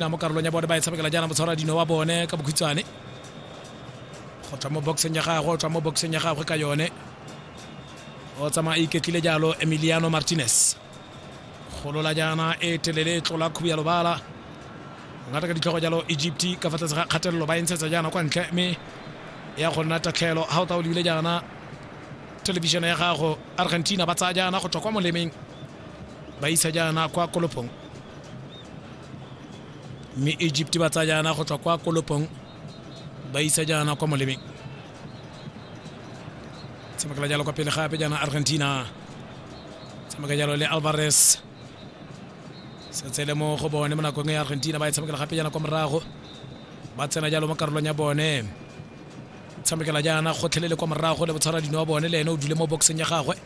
na mo karolong ya bone ba e tshamekela jaana motshwara dino wa bone ka bokhutshwane go tswa mo boxeng ya gagwe o tswa mo boxeng ya gagwe ka yone o tsamaya a iketlile jalo emiliano martinez golola jaana e telele e tlola khubu ya lobala ngata ka ditlhogo jalo egypt ka fa tlase ga kgatelelo ba e ntshetsa jaana kwa ntle mme ya go nna tatlhelo ga o ta o lebile jaana thelebišene ya gago argentina ba tsaya jaana go tswa kwa molemeng ba isa jaana kwa kolopong mme egypt ba tsaya jaana go tswa kwa kolopong ba isa jaana kwa molemeng tshamekela jalo kwa pele gape jaana argentina tshameka jalo le alvarez setse le mo go bone mo nakong e argentina ba e tshamekela gape jaana kwa morago ba tsena jalo mo karolong ya bone tshamekela jaana gotlhelele kwa morago le botshwara dino wa bone le ene o dule mo boxeng ya gagwe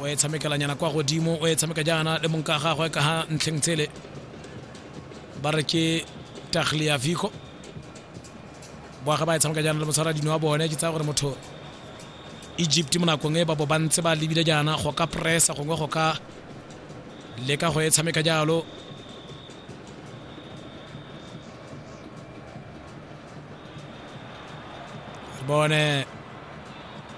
o e tshamekelanyana kwa godimo o e tshameka jaana le monka gagwe ka ga ntlheng tsele ba re ke tagliavico boage ba e tshameka jaana le motshwara dino wa bone ke tsaya gore motho egypt mo nakong e ba bo ba ntse ba lebile jaana go ka pressa gongwe go ka leka go e tshameka jalo bone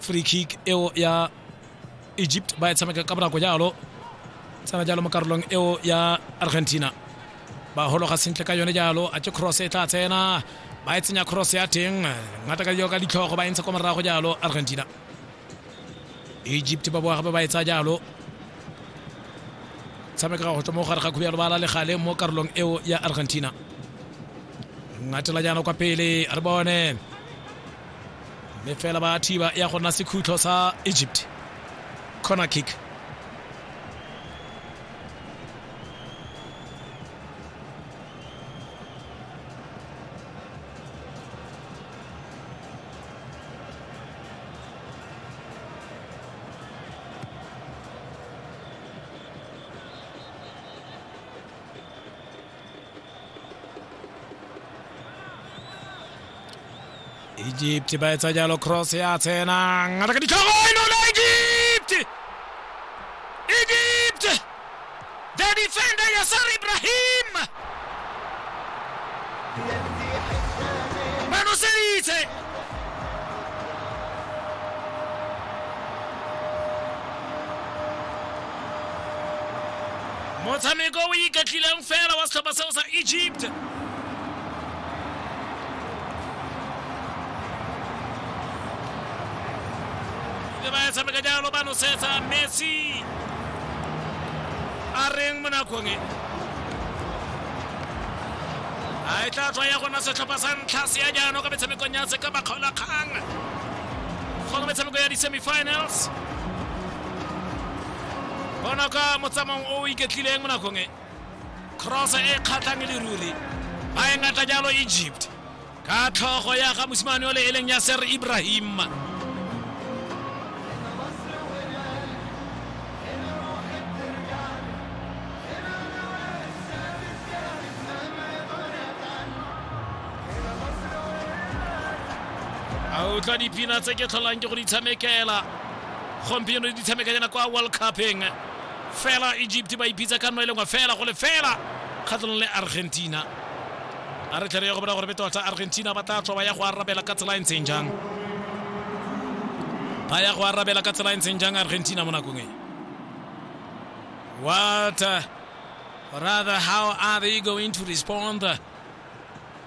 free kick eo ya egypt ba e tshameka ka bonako jalo tsena jalo mo karolong eo ya argentina ba hologa sentle ka yone jalo a ke cross e tla tsena ba e tsenya cross ya teng ngata ka dilo ka ditlhogo ba e ntsha kwa morago jalo argentina egypt ba boa gape ba e tsaya jalo tshameka go tswa mo gare ga khubjalo ba la legale mo karolong eo ya argentina ngatela jaana kwa pele re bone mme fela ba thiba ya go nna sekhutlho sa egypt corner kick egypt ba etsa jalo cross ya tsenang ngata ka ditlhogo e nola egypt egypt the defender yasar ibrahim ba noseditse Motshameko o iketlileng fela wa setlhopha seo sa Egypt. Ke ba e tshameka jalo ba nosetsa Messi. A reng mo nakong e. A e tla tswa ya gona setlhopha sa ntlha se ya jaanong ka metshamekong ya se ka bakgaolakgang. Go ka metshameko ya di-semifinals. bona ka motsamong o o iketlileng mo nakong e cross e kgatlhang e le ruri ba e ngata jalo egypt ka tlhogo ya ga mosimane o le e leng ya ser ibrahim a utlwa dipina tse ke tlholang ke go di tshamekela gompieno di tshameka jana kwa world cupeng fela egypt ba ipitsa ka nno e lengwe fela go le fela kgatlhanong le argentina a re tlhere ya go bona gore be tota argentina ba tla tswa ba ya go arabela ka tsela e ntseng jang ba ya go arabela ka tsela e ntseng jang argentina mo nakong e what uh, rather how are they going to respond uh,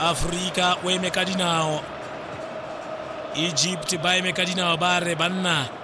aforika o eme ka dinao egypt ba eme ka dinao ba re banna